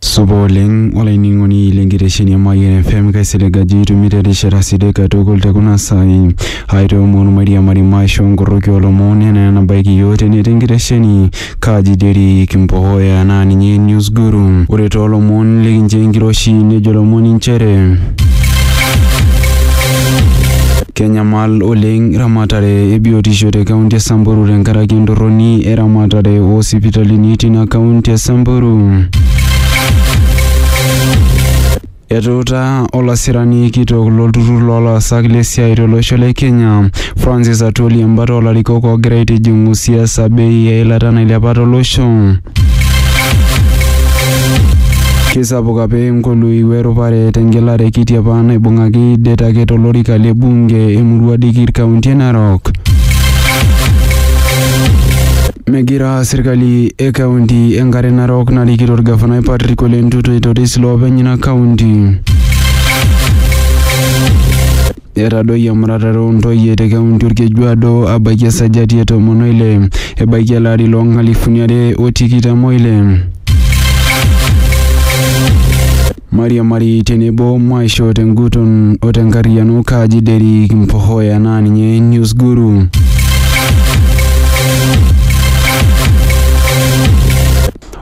supa oleng olainining'oni lenkitesheni e Mayian FM kaisilig ajo itumito erishata sidai katukul te kuna saai aitoomon mairiamari maisho nkoroki olomon enaa enabaiki yiok tene tenkitesheni Kaji Derrick Mbohoya naa ninye News Guru. Ore too lomon likinchoo enkiroshi nejo lomoni nchere kenyamal oleng ramatare e biotisho te kaunti e Samburu tenkaraki entorroni e ramatare oo sipitalini tina kaunti e Samburu. Etuutaa olasirani kitok lo lturrur loo laasak le siaai to losho le Kenya, Francis Atwoli embata oo larikok oogira aitijing'u siasa bei e ilata nailepa to losho. Keisapuk apa engolui we rupare te ngelare kiti apa naibung'aki det ake to lorika le bunge e murua Dikir kaunti e Narok. Megira Etaa serkali e kaunti e Nkare Narok narikito olgafanai Patrick Ole Ntutu aitoris loopeny ina kaunti. Etadoyie emuratare oo ntoyie te kaunti Olkejuado abaiki esajati e tomon o ile ebaiki ele ari loo nkalifuni are o tikitam o ile. Mariamari tenebo maisho tenguton o tenkarriyiano Kaji Derrick Mpohoya naa ninye News Guru.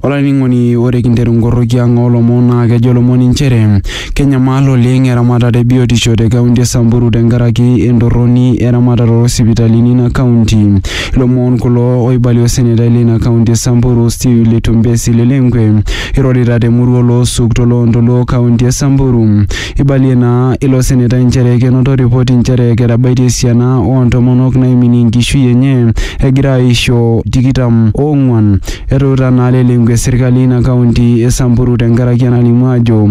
Olainining'oni ore kinteru nkorroki ang oolomon naa kejo lomon inchere kenyamal oleng eramatare e biotisho te kaunti e Samburu tenkaraki entorroni eramatare oo sipitalini ina kaunti. Ilomon kulo oibalie osenetai leina kaunti e Samburu Stew Letumbesi Lelenkwe Irorita te murua oloosuk to loontoluo kaunti e Samburu, eibalie naa ilo senetai nchere kenoto ripoti nchere ketabaitie esiana oo ntomonok naiminie enkishui enye egira aaisho tikitam o ong'uan. Etuutaa naa Lelengwe serkali eina kaunti e Samburu tenkaraki enalimu ajo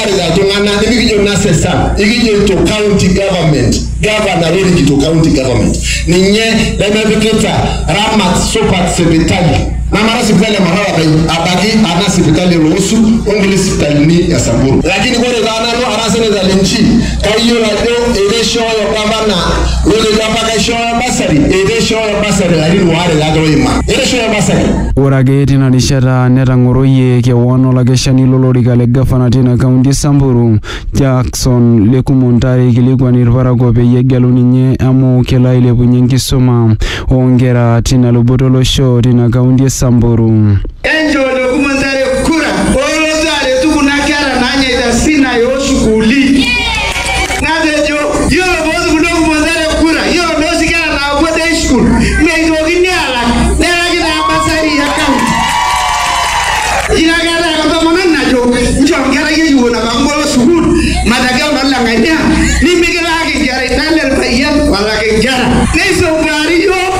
kiarita iltung'anak nimikijo nasesa ikijoito county government gavana lorikito county government ninye lemepikita ramat supat sipitali namara sipitali emarara pai abaki ana sipitali eloosu onkulie sipitalini e samburu lakini kore taa nanu ara seneta linchi kayiolo ajo ereishooyo gavana lotejo apa kaishooyo basari etaa eishooyo basari larin waare kake oima etu eishooyo basari. Ore ake tina rishata netang'oroyie kewon olakeshani lolorika le gavana tina kaunti e Samburu, Jackson Lekumo Ntare eikilikuan ilparakuo peyie egelu ninye amu kelo ailepunye enkisuma oo nkera tina luboto olosho tina kaunti e Samburu. Enjoojoki Mathare kura olotu aretu kuna kera naanyaita Sinai o sukuuli. Natejo yiolo pootupunoki Mathare kura, yiolo nooshi kera naapuo day school meitokini aalak nelaki taa basari e county. Ina kata ake entomononi najo nchoo nkerai ekipuo napa kibolo sukuul matagel noo leng'ania nimikilaaki nkera ina le lpayian olaki nkera. Neisombuari iyiook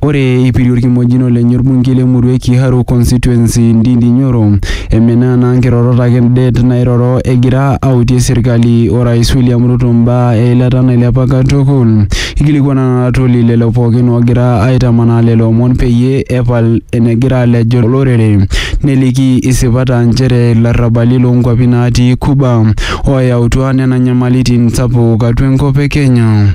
Ore eipirie olkimojino lenye olbungei le murua e Kiharu Constituency Ndindi Nyoro emenaa naa nkirorot ake det nairoro egira autie serkali o Rais William Ruto mbaa e ilata nailepa katukul. Eikilikuana naa Atwoli lelo pookin oogira aitamanaa lelo omon peyie epal enegira alejo olorere neliki isipat aa nchere ilarrabali loo nkwapi naatii Cuba ooyautua nena nyamalitin sapuk atua enkop e Kenya.